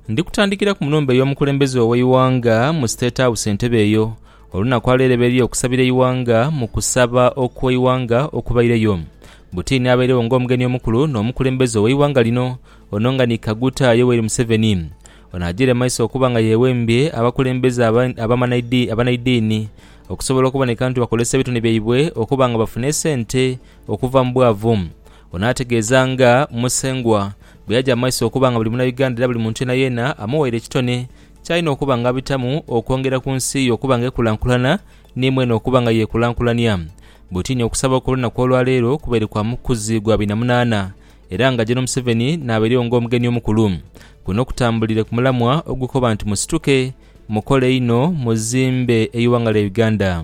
Ndikutandikira ku nhumba ey'omukulembeze ow'eighanga mu State House Entebbe eyo olunaku alwereberia okusabira eighanga mu kusaba okw'eighanga okubaireyo. Butini abairegho ng'omugeni omukulu n'omukulembeze ow'eighanga lino ono nga ni Kaguta Yoweri Museveni. Ono ajiire mu maiso okuba nga yewembye abakulembeze abanaidini okusobola okuboneka nti bakozesa ebitone byaibwe okuba nga bafuna esente okuva mu bwavu. Ono ategeeza nga Musengwa bweyaja mu maiso okuba nga buli munauganda era buli muntu yenayeena amuwaire ekitone kyalina okuba nga abitamu okwongera ku nsi ye okuba nga ekulankulana ni mweene okuba nga yekulankulania. Butiini okusaba okw'olunaku olwaleero kubaire kwa mukuzi gwa bina munaana era nga Gen Museveni nabairegho nga omugeni omukulu. Kuno kutambulire ku mulamwa ogukoba nti musituke, mukole inho, muzimbe eighanga lya Uganda.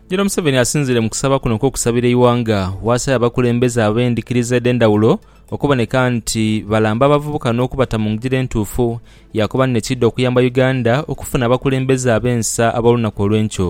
Jeno Museveni asinziire mu kusaba kuno okw'okusabira eighanga bw'asabye abakulembeze ab'endhikiriza edh'endhaghulo okuboneka nti balamba abavubuka n'okubata mu ngira entuufu yaakoba ni nekiidha okuyamba Uganda okufuna abakulembeze ab'ensa ab'olunaku olw'enkyo.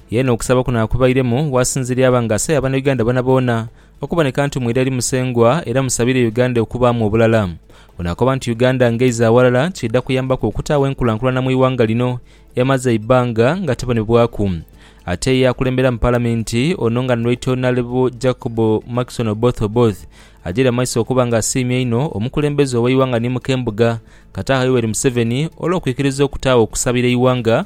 Yeena okusaba kuno akubairemu wasinziira yaba nga asaba bana Uganda boonaboona okuboneka nti mwira eri Musengwa era musabire Uganda okubaamu obulala. Ono akoba nti Uganda ng'eiza aghalala kiidha kuyambaku okutaagho enkulankulana mu ighanga lino eyamaze eibbanga nga tebonebwaku. Ate ye akulembera mu Palamenti ono nga ni Right Honourable Jacob Markison Oboth Oboth ajeire amaiso okuba nga asiimye einho omukulembeze ow'eighanga ni mukembuga Kataha Yoweri Museveni olw'okwikiriza okutaagho okusabira eighanga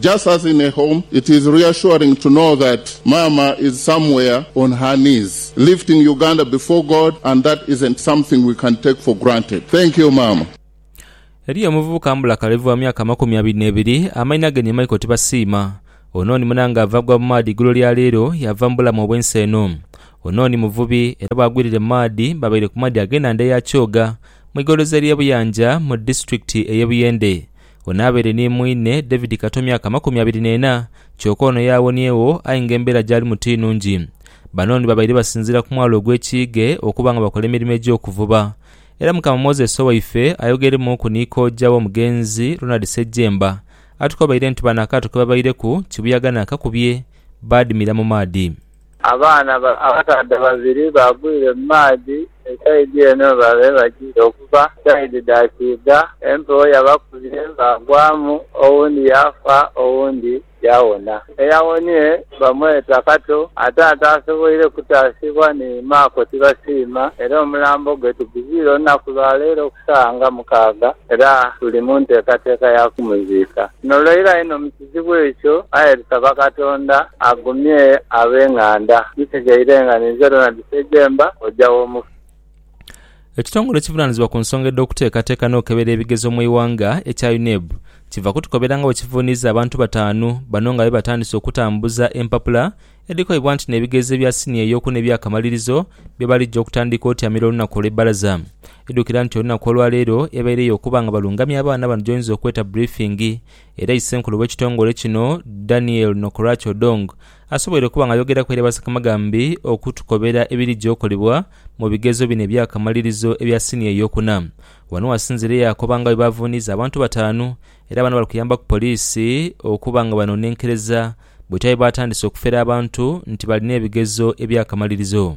Just as in a home, it is reassuring to know that Maama is somewhere on her knees lifting Uganda before God and that isn't something we can take for granted. Thank you Maama. Eriyo omuvubuka mbula kalevu wa myaka amakumi abiri n'ebiri, amainha ge ni Michael Tibasiima. Ono ni muna ng'ava agwa mu maadhi eigulo lya leero yaava mu bulamu obw'ensi eno. Ono ni muvubi era bwagwirire mu maadhi babaire ku maadhi ag'enhandha eya Kyoga mu igoloza ly'e Buyanja mu disitulikiti ey'e Buyende. Ono abaire ni mwine David Kato myaka amakumi abiri n'ena, kyoka ono yaawoniegho aye nga embeera gy'alimu ti nungi. Bano ni babaire basinziira ku mwalo ogw'e Kiige okuba nga bakola emirimo egy'okuvuba. Era Mukama Moses owaife ayogeremuuku ni kojja w'omugenzi, Ronald Ssejjemba, atukobaire nti bano akaato ke babaireku kibuyaga naakakubye, baadimira mu maadhi. Abaana abakaadha babiri baagwire mu maadhi e saidi eno we baabaire bagiire okuva, saidi dha kiidha. Empewo yabakubye baagwamu, owundi yaafa owundi yaawona. Eyawonie bamweta Kato ate ataasoboire kutaasibwa ni Maako Tibasiima era omulambo gwe tuguzwire olunaku lwa leero ku saawa nga mukaaga era tuli mu nteekateeka ya kumuziika. Luno lwa ira inho mu. Ekizibu ekyo, aye tusaba Katonda agumye ab'enganda. Tutegeire nga ninze Ronald Sejemba, kojja w'omufu. Ekitongole ekivunaanizibwa ku nsonga edh'okuteekateeka n'okukebera ebigezo mu ighanga ekya UNEB kiva kutukobera nga bwe kivuuniiza abantu bataanu bano nga bebatandise okutambuza empapula edhikoibwa nti n'ebigezo ebya siniya ey'oku n'ebyakamalirizo byebalijja okutandika otyamira olunaku olw'ebbalaza idhukira nti olunaku olwaleero ebaireyo okuba nga balungamya abaana bano gyoyinza okweta briefing Era Isenkulu w'ekitongole kino, Daniel Nokorach Odong asoboire okuba nga ayogeraku eri abasekamagambi okutukobera ebirija okolebwa mu bigezo bino ebyakamalirizo ebya siniya eyokuna. Wano wasinziire yaakoba nga bwebavuuniiza abantu bataanu era bano bali kuyambaku poliisi okuba nga banonenkereza bwetyabaire baatandise okufera abantu nti balina ebigezo ebyakamalirizo.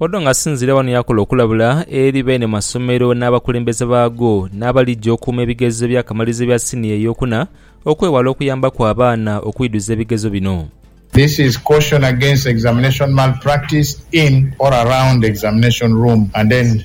Odong asinziire ghano yaakola okulabula eri beene masomero n'abakulembeze baago n'abalija okuuma ebigezo eby'akamalirizo ebya siniya ey'okuna okwewala okuyambaku abaana okwidhuza ebigezo bino. This is caution against examination malpractice in or around examination room and then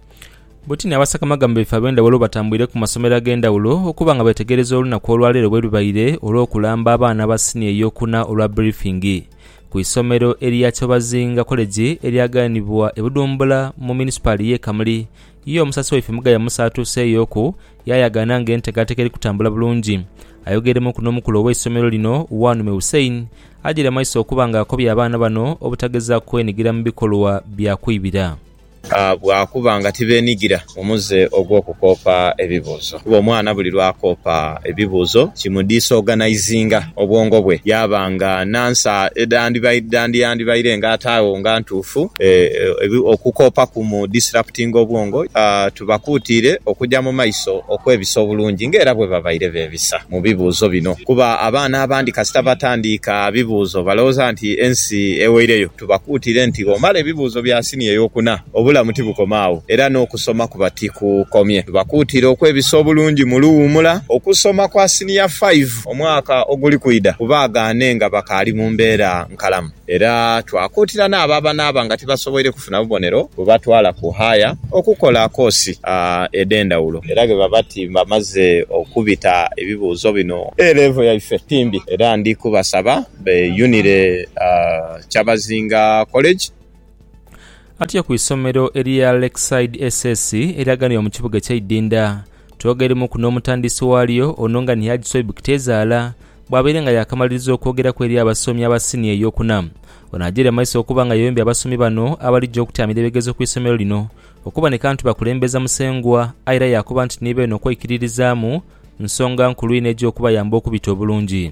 Buti ni abasakamagama baife ab'endhaghulo batambwire ku masomero ag'endhaghulo okuba nga beetegereza olunaku olwa leero bwe lubaire olw'okulamba abaana ba siniya ey'okuna olwa birifingi ku isomero erya Kyobazinga Koleji eryaganibwa e Budhumbula mu munisipaali y'e Kamuli. Ye omusasi waife Mugaya Musa atuuseeyoku yaayagaana ng'enteekateeka eri kutambula bulungi. Ayogeremuuku n'omukulu ow'eisomero lino, Wanume Hussein ajaire amaiso okuba nga akobye abaana bano obutagezaaku kwenigira mu bikolwa bya kwibira. Bwakuba nga tibenigira mu muze ogw'okukoopa ebibuuzo, kuba omwana buli lw'akoopa ebibuuzo kimudisoganayizinga obwongo bwe yaaba nga n'ansa edhandiyandibaire nga ate agho nga ntuufu. Okukoopa kumudisiraputinga obwongo. Tubakuutiire okuja mu maiso okwebisa obulungi nga era bwebabaire beebisa mu bibuuzo bino kuba abaana abandi kasita batandiika bibuuzo balowooza nti ensi eweireyo. Tubakuutire nti bw'omala ebibuuzo bya siniya ey'okuna, obulamu tibukoma agho era n'okusoma kuba tikukomye. Tubakuutire okwebisa obulungi mu luwuumula okusoma kwa siniya faivu omwaka oguli kwidha ku baagaane nga bakaali mu mbeera nkalamu. Era twakuutira n'abo abanaaba nga tibasoboire kufuna bubonero bubatwala ku haaya okukola koosi edh'endhawulo. Era ghe baba ti bamaze okubita ebibuuzo bino, A-Level yaife ti mbi era ndi kubasaba Beeyunire Kyabazinga College. Atyo ku isomero erya Lakeside SS eryaganibwa mu kibuga ekya Idinda. Twogeremuku n'omutandisi waalyo ono nga ni Haji Swaib Kiteezaala bwabaire nga yaakamaliriza okwogeraku eri abasomi aba siniya ey'okuna. Ono agyeire mumaiso okuba nga yeyombya abasomi bano abalija okutyamira ebigezo ku isomero lino okuboneka nti bakulembeza Musengwa aye era yaakoba nti ni beene okweikiririzaamu nsonga nkulu inho egya okubayamba okubita obulungi.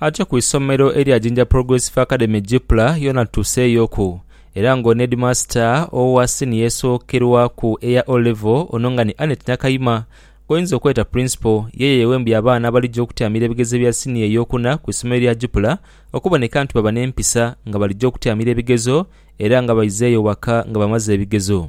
Ate ku isomero erya Jinja Progressive Academy Gipla yona tutuseeyoku era nga ono headmaster owa senior esookerwaku eya O level ono nga ni Annet Nakayima gwoyinza okweta Principal yeye yewembye abaana abalija okutyamira ebigezo bya senior eyokuna ku isomero lya Gipla okuboneka nti baba n'empisa nga balija okutyamira ebigezo era nga baizeeyo waka nga bamaze ebigezo.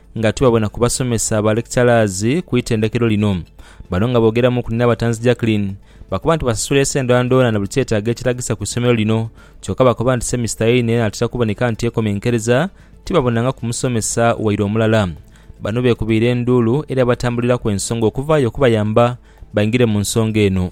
Nga tuli babona ku basomesa ba lecturers ku itendekero lino, bano nga boogeramu ku Nirabatanzi Jacqueline, bakoba nti basasula ese ndhoonadhoona na buli kyetaago ekiragisa ku isomero lino kyoka bakoba nti semisita yeino enaatera kuboneka nti ekomenkereza tibabonangaku musomesa waire omulala. Bano beekubaire enduulu era batambulilaku ensonga okuvaayo okubayamba baingire mu nsonga eno.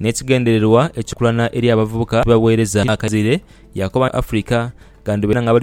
N'ekigendererwa ekikulana eri abavubuka abaweereza akaire, yaakoba nti Africa gandhubeera nga